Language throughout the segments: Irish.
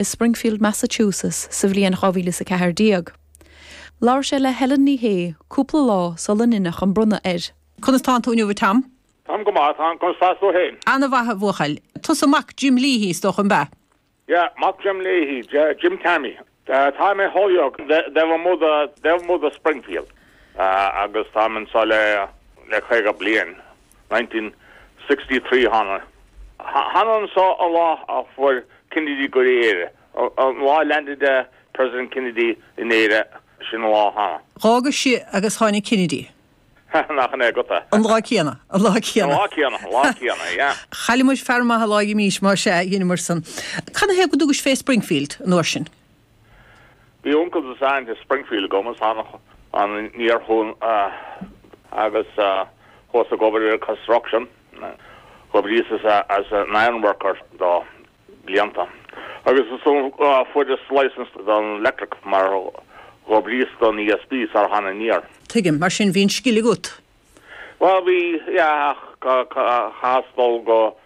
i Springfield Massachusetts sa bhliain 2014. Labhair sé le Helen Ní Shé cúpla lá sula ndeineadh an bronnadh air. Conas tánn tú inniu a Tom? Táim go maith, a Tom. Conas atá tú féin? Ana-mhaith a bhuachaill. Tusa mac Jim Leahy is dócha, an b'ea? Yeah, mac Jim Leahy, Jim Tommy. Tá mé i Holyoke, taobh amuigh de Springfield, agus táim anseo le caoga bliain. 1963 a thánag anseo an lá a chuaigh Kennedy go dtí Éire, an lá a landed President Kennedy in Éire, sin an lá a thánag. D'fhágas-sa agus tháinig Kennedy. Hannah ach an é agat é? An lá céanna, an lá céanna. An lá céanna, an lá céanna, yeah. Chaill muid fear maith an lá a imís, más ea, dheineamar san. Cad ina thaobh go dtugais fé Springfield an uair sin? Bhí uncail is aint i Springfield agam is thánag aniar chucu agus chuas ag obair ar an construction. Dh'oibríos-sa as an ironworker do bhlianta agus ansan fuaireas licence don electric mar dh'oibríos-sa don ESB sar a thánag aniar. Tuigim. Mar sin bhí an scil agat. Bhuel bhí, yeah, ach chaitheas dul go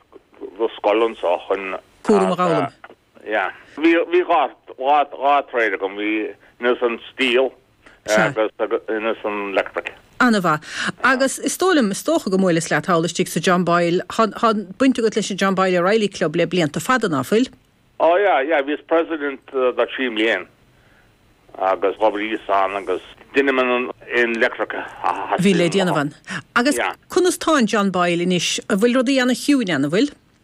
scoil anseo chun an cúram a dh'fhoghlaim. Sea. Bhí, bhí dhá, dhá, dhá trade agam, bhíos insan steel Sea. agus, agus insan electric. Ana-mhaith. Yeah. Agus is dóigh liom, is dócha go mbuaileas leat thall istigh sa John Boyle, tá, tá baint agat leis an John Boyle O'Reilly Club le blianta fada, ná fuil? Ó yeah, yeah, bhíos president do thrí mbliain agus dh'oibríos ann agus deinim an, an electric a Bhí le theastaíonn déanamh uaim. ann. Agus Yeah. conas tá an John Boyle anois, an bhfuil rudaí ana chiúin ann, an bhfuil?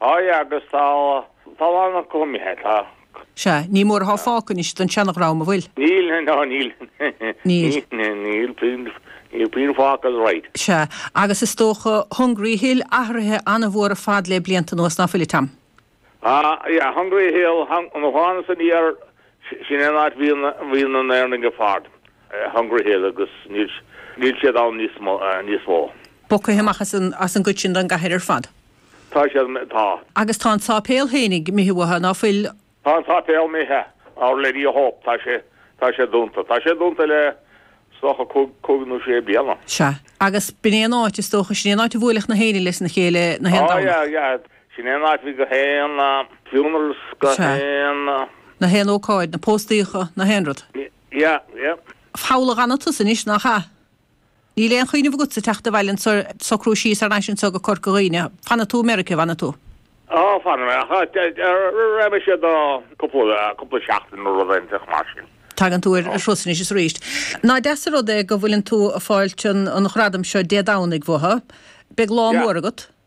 Á yeah, agus tá a lán acu imithe, tá. Sea, ní mór athá fágtha anois den seanadhream, an bhfuil? Níl, ná níl. Níl. Níl puinn, níl puinn fágtha that's right. Sea, agus is dócha Hungry Hill athraithe an-mhór ar fad le blianta anuas, ná fuil a Tom? Á, yeah, Hungry Hill, hung, nuair a thánagsa aniar, sin é an áit bhí na, bhí na hÉireannaigh ag fáil, Hungry Hill, agus níl, níl siad ann níos mo, níos mó. Bogtha amach as an, as an gcuid sin den gcathair ar fad. Tá sé ar na. Tá. Agus tá an sáipéal féinig imithe uathu ná fuil. Tá an sáipéal imithe, Our Lady of Hope. Tá sé, tá sé dúnta. Tá sé dúnta le, is dócha, cúig, cúig nó sé bliana. Sea. Agus b'in aon áit, is dócha, sin aon áit a bhuailfeadh na héinne leis na chéile, na haon Domhnach. Á, yeah, yeah. Sin aon áit a bhí gach aon, funerals gach Sea. aon. Na haon ócáid, na póstaíocha, na haon rud. Yeah, yeah. Foghla gan iontas anois, nach ea? Níl aon chuimhneamh agatsa teacht abhaile is socrú síos thar n-ais anseo go Corca Dhuibhne. Fanfaidh tú i Meirice, bhfanfaidh tú? Á, fanfaidh mé, ach raghaidh mé siar do chúpla seachtain nó rud inteacht mar sin. Tagann tú ar thuras anois is arís. Nach deas an rud é go bhfuileann tú ag fáilt an ghradaim seo Dé Domhnaigh uathu. Beidh lá mór agat.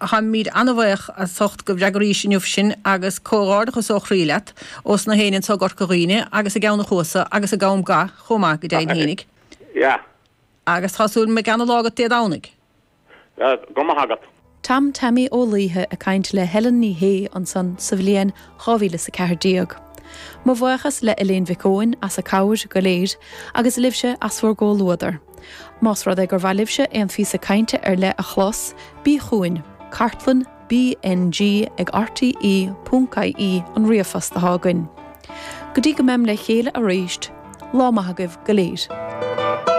Táimid an-bhaoch as ucht go bhfreagraís inniu sinn agus comhghárdachas ó chroí leat ós na héinne anso i gCorca Dhuibhne agus i gCeann a Chuasa agus i gCom Ga chomh maith go deimhin fhéinig agus tá súil go mbeidh ana-lá agat Dé Domhnaigh. Go raibh maith agat. Tom Taimí Ó Laoithe ag caint le Helen Ní Shé ansan sa bhliain 2014. Mo bhuíochas le Elaine Mhic Eoin as a cabhair go léir, agus libhse as bhur gcomhluadar. Más rud é gur mhaith libhse aon phíosa cainte ar leith a chlos, bí chugainn, cartlann BNG ag rte.ie an ríomhphost atá againn. Go dtí go mbeim le chéile aríst, lá maith agaibh go léir.